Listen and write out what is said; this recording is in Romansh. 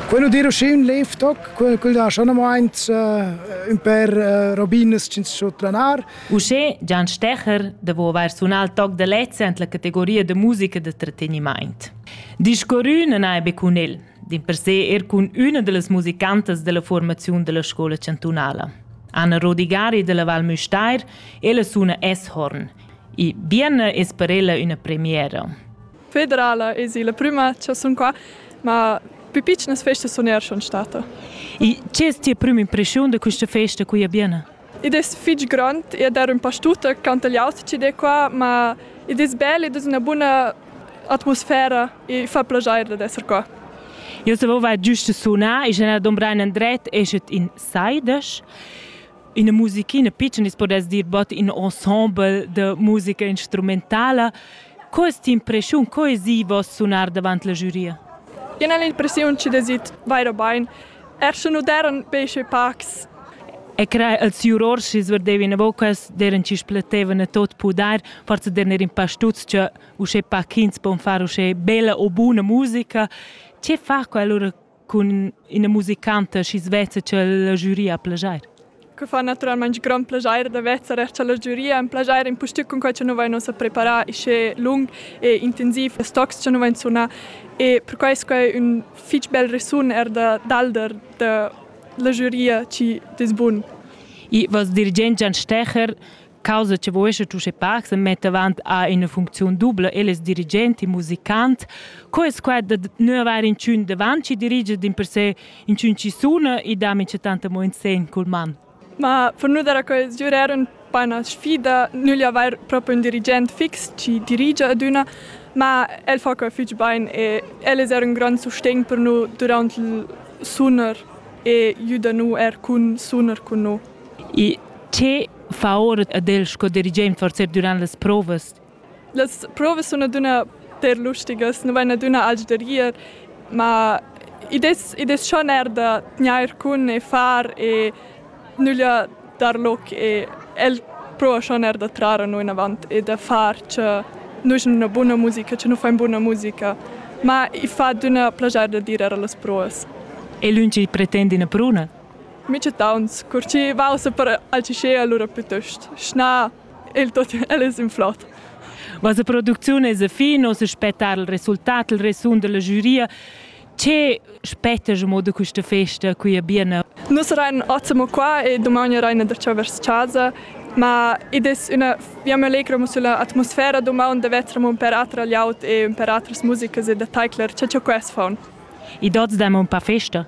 Quello di Roschin lev toc, quel quel ha schon amaint uh, un per uh, robinas che so tranar. Uschè Gian Stecher devo aver sunar il toc de lezza en la categoria de musica de tratteniment. Discorrü non hai be cun el, din per sé er cun una de las musicantas della formazione della scuola cantunala. Anna Rodigari della Val Müstair, ella suna S-Horn. E Bienne es per ella una premiera. federala es illa prüma cha sun qua, ma pü pitschnas festas sun eir schon stada. E che es tia prüma impreschiun da quista festa qui a Biena? Id es fich grond ed er ün pa stuta cantagliaut chi'd è qua, ma id es bel, id es üna buna atmosfera e fa plaschair dad esser qua. Eu savevo giusto sunar e generar Don Brian Andret esset in saidas. ina musichina pitschna, si podess dir bod in ensemble da musica instrumentala. Co es t'impreschiun, co es i voss sunar davant la giuria? Ien è l'impressiun chi desit vaira bain. Er sche nu deran be sche pacs. E crai als jurors chi sverdevan a vocas, deran chi spletevan a tot pudar, forse der ner in pa stuz che uschè pa ch'ins pon far uschè bella o buna musica. Che fa quella cun ina musicanta schi svezza ch'el la giuria plageir. Que fa naturalmaing grand plageir da vezzar cha la giuria am plageir impustüt cun quai cha nu vain ussa preparà uschè lung e intensiv e stocs cha nu vain sunà e perquai es quai ün fich bel resun eir da dalder da la giuria chi dess bun. I voss dirigent Gian Stecher causa che vuescha Tusche Park se metta avant a ina funcziun dubla eles dirigent e musicant. Co es quai da nu avair inchün davant chi dirige din per se inchün chi suna e dam in tanta mo in sen cul man? Ma per nu dar a quels giurer un po una sfida, nu gli avair proprio un dirigent fix chi dirigia ad üna, ma el fa quai fich bain e el es eir un grand sustegn per nu durant il sunar e jüda nu eir cun sunar cun nu. Il TV ed el sco dirigent forsa durant las provas. Las provas sun adüna per lustigas, nu vain adüna alch da rir, ma id es id es schon eir da tgnair cun e far e nüglia dar loc e el prova schon eir da trar a noi inavant e da far cha nus in üna buna musica, cha nu fain buna musica. Ma i fa adüna plaschar da dir eir a las provas. E lünch pretend üna pruna? Micetauns, cur chi vausa per Alcicea lura plütost schna il tot el es in flot. Vossa producziun es a fin, nos aspettar il resultat, il resun della giuria. Che spettas mo da questa festa qui a Biena? Nus rein ottimo qua e domani reina da ciò vers casa, ma id es üna, io mi allegro sulla atmosfera domani da vetramo un per atra laut e un per atras musicas e da taicler, ce ciò quest faun. I dots da un pa festa?